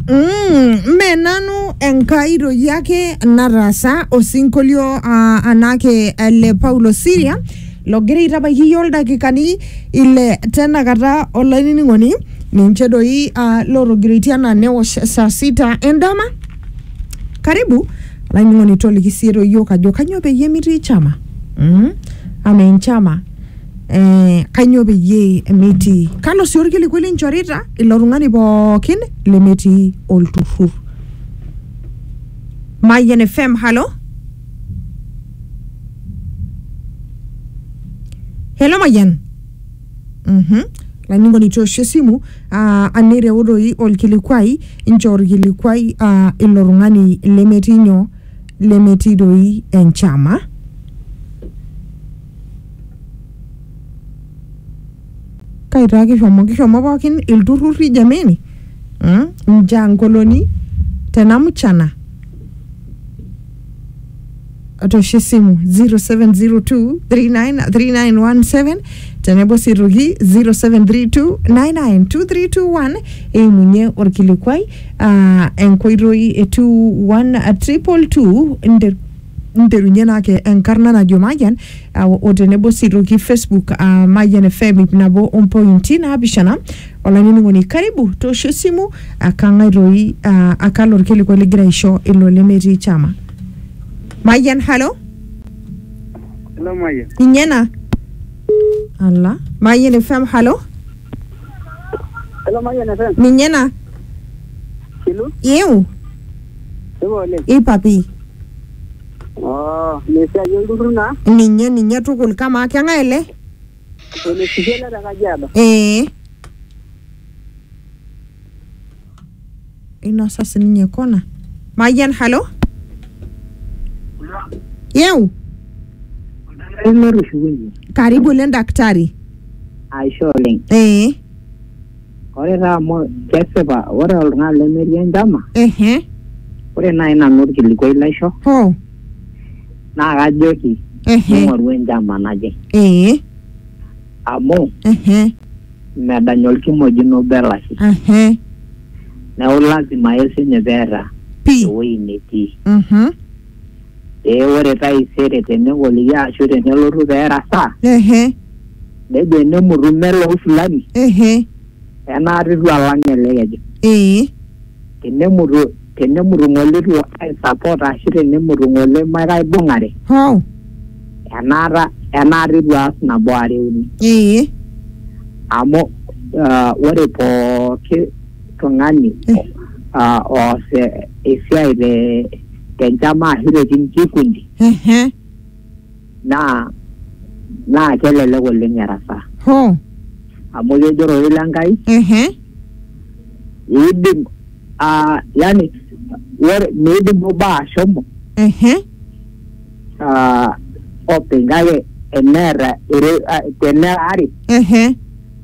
Mm, mme nanu enkai toki ake nataasa osinkolio uh, anake ele paulo siria logira aitabaiki iyie oldakikani ile tenakata olainining'oni ninche doi uh, lotogiroitie anaa newosh saa sita endama karibu olainining'oni toliki siye toyiok ajo kanyoo peyie mitii chama mm? ama enchama eh, kanyoo peyie metii kalo sii orkilikuai linchorita ilo tung'ani pookin lemetii olturrur Mayian FM halo Hello Mayian Mhm. Lainingoni toosho esimu ah, anireu doi olkilikuai inchoo olkilikuai ah, ilo tung'ani lemetii nyoo lemetii doi enchama kaitaa kishomo kishomo pookin ilturrurri jameni mm? njankoloni tena mchana atosho esimu 0702393917 tenebo sii aitoki 0732992321 eimunye orkilikuai aa enkoitoi e 21222 nterunye naa ake enkarna najo Mayian ah, o tenebo sii toki Facebook ah, Mayian FM ip nabo ompointi naapishana olainining'oni karibu toosho esimu ah, kang'ae toi ah, akalo orkilikuai ligira aisho ilo lemetii chama Mayian halo Hello, Mayian. ninye ena ala Mayian FM halo Hello, Mayian FM. ninye ena Hello. iu Supa oleng. Ipa pii. Oh, ina esiai olturrur naa. Ninye ninye tukul. Kamaa keng'ae ele? Ole Sipia ele te Kajiado. Ee. Einosa sininye kona. Mayian, halo? Yeu? Karibu ele daktari. Aisho oleng. Ee. Ore taa amu kesipa ore oltung'ani lemetii enchama, Ehe. ore naaji nanu orkilikuai laisho Hoo. naa kajoki Ehe. ming'oru enchama naje Ee. amu Ehe. medany olkimojino obo elashe Ehe. neeku lazima ake siinye peeta Pii. ewueji netii. Mhm. Ee ore taisere tenegol iyie ashu tenelotu pee erasaa, Ehe. nejo enemutu melou fulani Ehe. enaata itu alang ele keju. Ee. Tenemutu tenemutu ng'ole itu aisupport ashu tenemutu ng'ole makaibung'are Hoo. enaata enaata itu aas nabo are uni. Ee. Amu ah, ore pooki tung'ani ah, oas eh, esiai te tenchama ashu te kikundi Ehe. naa naa kelelek oleng erasaa Ho. amu kejo ororei le Nkai Ehe. iidim ah, yani ore miidim obo ashomo Ehe. ah, openy kake eneeta ere- ah, teneera are Ehe.